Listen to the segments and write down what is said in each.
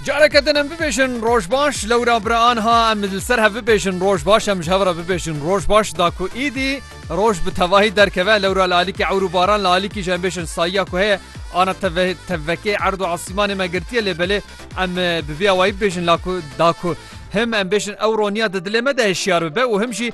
Careke din em bibêjin roj baş lewra bira anha em li ser hev bibêjin roj baş em ji hev re bibêjin roj baş da ku îdî roj bi tevahî derkeve lewra li alîkî ewr û baran li alîkî ji em bêjin sayiya ku heye ana teve tevekê erd û asîmanê me girtiye lê belê em bi vî awayî bibêjin la ku da ku him em bêjin ewro niya di dilê me de hişyar bibe û him jî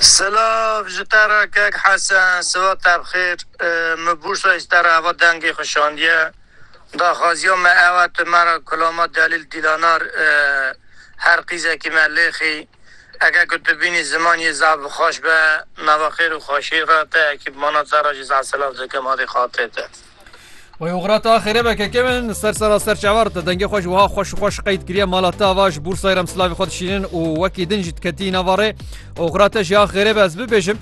Silav ji te re kek Hesen, siweb te bi xêr. Min bûrsa ji te re heva dengê xwe şandiye. Daxwaziya me ew e tu me re Kulama Delîl Dîlanar her qîzekî me lêxî. Eke ku tu bînî ziman yê zaf bi xweş be. Nava xêr û xweşiyê re te ekîpmana te re jî zaf silav dikim. Adê xatê te. Wê oxra ta xêre be keke min li ser sera ser çavar te dengê xwe ji wiha xweş xweş qeyd kiriye mala te va ji bûrsayê rem silavê xwe dişînin û wekî din jî diketî nava rê oxra te ji ya xêre be ez bibêjim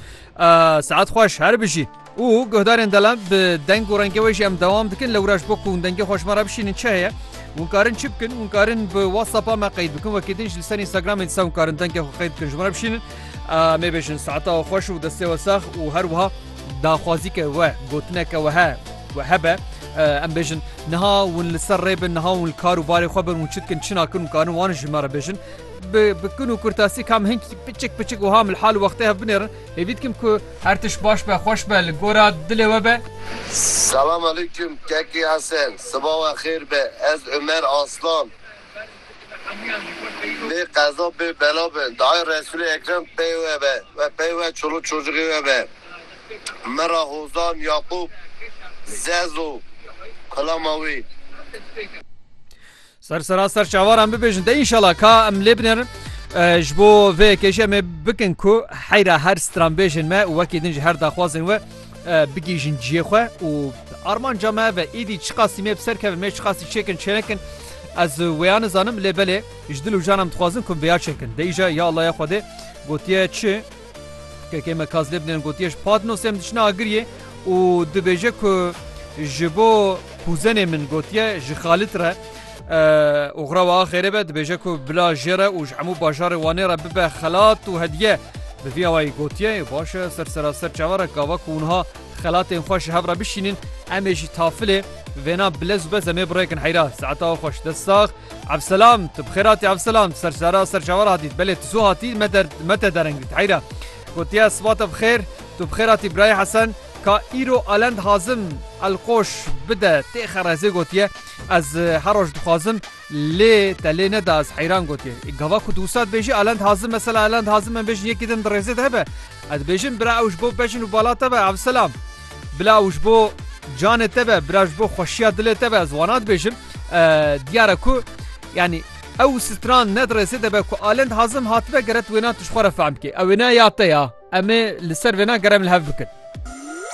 saet xweş her bijî û guhdarên delan bi deng û rengê wê jî em dewam dikin li wira ji bo ku hûn dengê xweş me re bişînin çi heye hûn karin çi bikin hûn karin bi whatsapp me qeyd bikin wekî din ji li ser instagramê dise hûn karin dengê xwe qeyd bikin ji me re bişînin mê bêjin saeta xweş û destê we sax û her wiha Daxwazî ke we gotineke we he we hebe em bêjin niha hûn li ser rê bin niha hûn li kar û barê xwe bin hûn çi dikin çi nakin û karin wan ji me re bêjin bi bi kin û kurtasî kam hin piçik piçik û ham li hal û wextê hev binêrin hêvî dikim ku her tişt baş be xweş be li gora dilê we be. Selam Aleyküm Kekê Hesen siba we xêr be ez Ömer Aslan Bê qeza bê bela be. Dayê Resûlê Ekrem pey we be we pey we çolûk çocixê we be. Mi ra Hozan Yaqûb Zezo xilama wî. Ser sera ser çawaran bibêjin te inşallah ka em lê biner ji bo vê yekê jî em ê bikin ku heyra her stranbêjên me û wekî din ji her daxwazên we Bigihîjin ciyê xwe û armanca me ev e êdî çiqasî me bi ser kevin me çiqasî çêkin çênekin ez wêya nizanim lê belê ji dil û jan em dixwazin ku vêya çêkin dê îja ya Allaye Xwedê gotiye çi kekê me kaz lê bidên gotiye ji Patnosê em diçine agiriyê û dibêje ku ji bo kuzenê min gotiye ji Xalit re Oxra wa xêrê be dibêje ku bila jê re û ji hemû bajarê Wanê re bibe xelat û hediye. Bi vî awayî gotiye baş e ser seraser çavarek gava ku wiha xelatên xwe ji hev re bişînin em ê jî tafilê vêna bilez û bez em ê birêkin heyra. Saeta we xweş. Dest sax. Evselam tu bi xêr hatî Evselam tu ser sera ser çavar hatî belê tu zû hatî me der me te dereng dît heyra. Gotiye siba te bi xêr tu bi xêr hatî birayê Hesen ka îro Alend Hazim Elqoş bide tê xerezê gotiye. Ez her roj dixwazim lê te lê neda ez heyran gotiye. Gava ku dûsa dibêjî Alan dihazim mesela Alan dihazim em bêjin yekî din di rêzê de hebe. Ez dibêjim bira ew ji bo bejin û bala te be evselam. Bila ew ji bo canê te be bira ji bo xweşiya dilê te be ez wana dibêjim. Diyar e ku yanî ew stran ne di rêzê de be ku Alan dihazim hatibe geret wêna tu ji xwe re fehm bikê. Ew wêna ya te ya. Em ê li ser wêna gerem li hev bikin.